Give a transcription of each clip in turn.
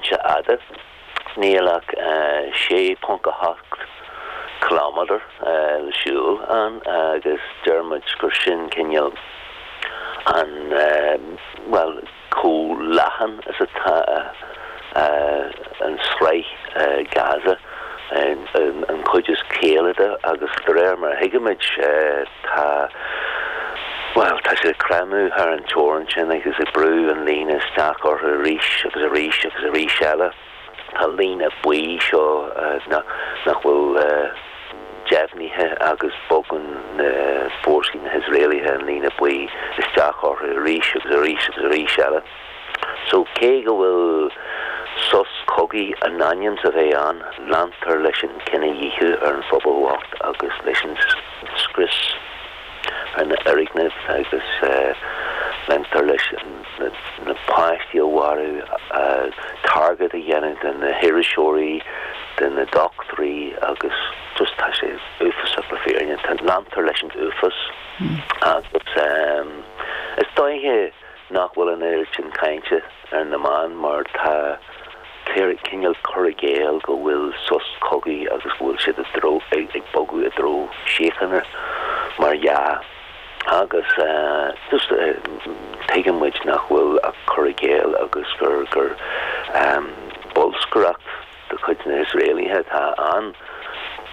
fhada, níl ach 6.8 ciliméadar le siúl ann agus deir muid gur sin cineál an, bhuel, chomh leathan is atá an tsraith Gaza, an chuid is caoile de agus de réir mar a thuigimid, Tá, bhuel, tá siad ag creimeadh thar an teorainn sin agus ag brú an líne isteach orthu arís agus arís agus arís eile. Tá líne buí seo nach bhfuil deimhnithe agus bogann na fórsaí, na hIosraelaithe, an líne buí isteach orthu arís agus arís agus arís eile. So, cé go bhfuil sos cogaidh in ainm is a bheith ann, leantar leis an gcinedhíothú ar an phobal bhocht agus leis an scrios ar na foirgnimh agus leantar leis na páistí a mharú, target a dhéanamh de na hiriseoirí, de na dochtúirí agus just tá sé uafásach le fírinne, leantar leis an uafás agus is dóiche. nach bhfuil an oiread sin cainte ar na meáin mar tá cineál cur i gcéill go bhfuil sos cogaidh agus go bhfuil siad ag bogadh i dtreo síochána mar dhea agus just tuigeann muid nach bhfuil ach cur i gcéill agus gur bolscaireacht de chuid na hIosraelaithe atá ann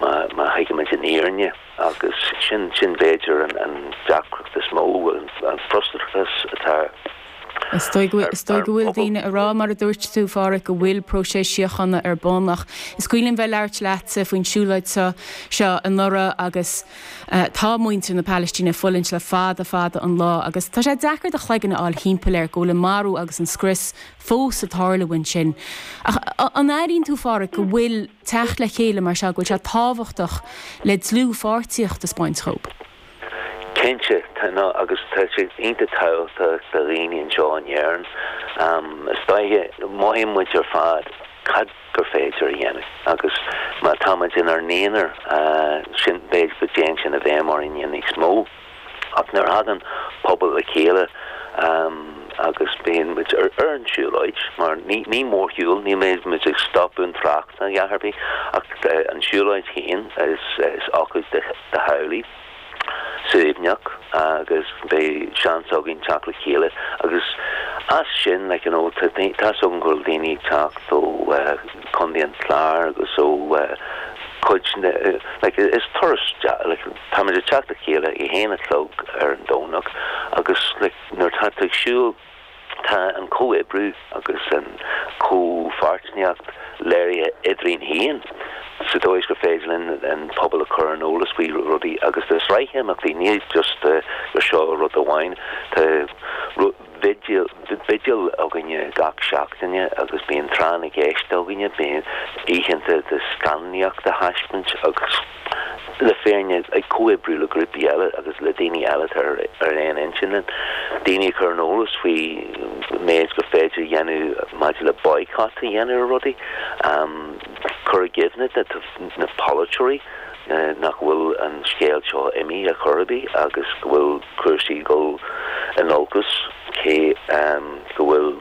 má thuigimid an fhírinne. agus sin b'fhéidir an deacracht is mó, an frustrachas is dóigh go bhfuil daoine ag rá, mar a dúirt tú, a Pháraic, go bhfuil próiseas síochána ar bun ach is cuimhin linn bheith ag labhairt leatsa faoin siúlóid seo anuraidh agus tá muintir na Palaistíne ag fulaingt le fada fada an lá agus tá sé deacair do chloigeann a fháil thimpeall air go bhfuil an marú agus an scrios fós ag tarlú ansin. Ach an airíonn tú, a Pháraic, go bhfuil. teacht le chéile mar seo, go bhfuil sé tábhachtach le dlúthpháirtíocht a spáint dóibh. Cinnte, tá agus tá sé iontach tábhachtach do dhaoine anseo in Éirinn. Is dóiche, mothaíonn muid ar fad cad gur féidir a dhéanamh agus má táimid inár n-aonar, sin, b'fhéidir go dtéann sin i bhfeidhm orainn níos mó. Ach nuair a thagann pobal le chéile agus beidh muid ar an tsiúlóid, mar ní mórshiúl, ní bheidh muid ag stopadh an trácht ná a dhath ar bith, ach an tsiúlóid féin, is ócáid do theaghlaigh shuaimhneach agus beidh seans againn teacht le chéile agus as sin, like you know, tá scata daoine ag teacht ó Chontae an Chláir agus ó chuid, like is turas deas, like. Táimid ag teacht le chéile ag a haon a chlog ar an Domhnach agus nuair atá tú ag siúl tá an comhoibriú agus an chomhpháirtineacht léirithe idir iad féin sa dóigh is gur féidir linn an pobal a chur ar an eolas faoi rudaí agus tá sraith imeachtaí, ní just le seo rud amháin, tá bhigil againn gach seachtaine agus bíonn tráth na gceist againn, bíonn oícheanta de scannánaíocht a thaispeáint agus. le foirne ag comhoibriú le grúpaí eile agus le daoine eile atá ar aon intinn linn, daoine a chur ar an eolas faoi méid gur féidir a dhéanamh maidir le boycott a dhéanamh ar rudaí, cur i gcuimhne do na polaiteoirí nach bhfuil an scéal seo imithe ar chor ar bith agus go bhfuil cúrsaí ag dul in olcas cé go bhfuil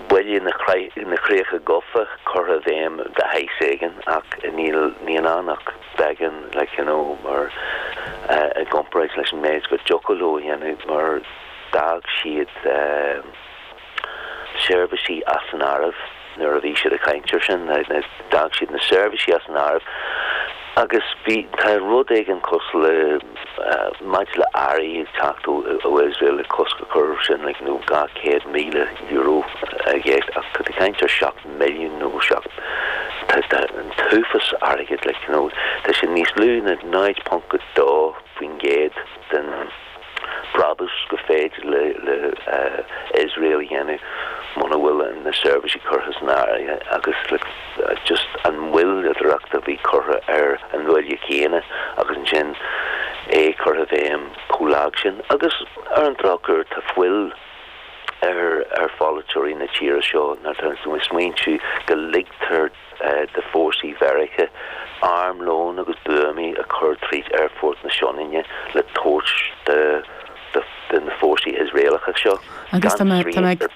Bille na gCríocha gofa curtha i bhfeidhm de shaghas éigin ach níl ann ach beagán, cineál, mar, i gcomparáid leis an méid go dtiocfadh leo a dhéanamh mar d'fhág siad seirbhísí as an áireamh. Nuair a bhí siad ag caint air sin, d'fhág siad na seirbhísí as an áireamh agus bhí, tá rud éigin cosúil le, maidir le earraí ag teacht ó Iosrael, le cosc a chur air sin, cineál €200,000 i gceist ach tá caint ar 7 milliún nó 7, tá, tá an t-uafás airgid le, cineál, tá sin níos lú na 0.2% den. brabús gur féidir le Iosrael a dhéanamh muna bhfuil na seirbhísí curtha san áireamh agus le just an moilleadóireacht a bhí curtha ar an mBille céanna agus ansin é curtha i bhfeidhm chomh lag sin agus ar an drochuair tá fuil ar pholaiteoirí na tíre seo nuair atá tú ag smaointiú go ligtear d'fhórsaí Mheiriceá, armlón agus buamaí a chur tríd Aerfort na Sionainne le tabhairt do na fórsaí Iosraelacha seo gan srian ar bith.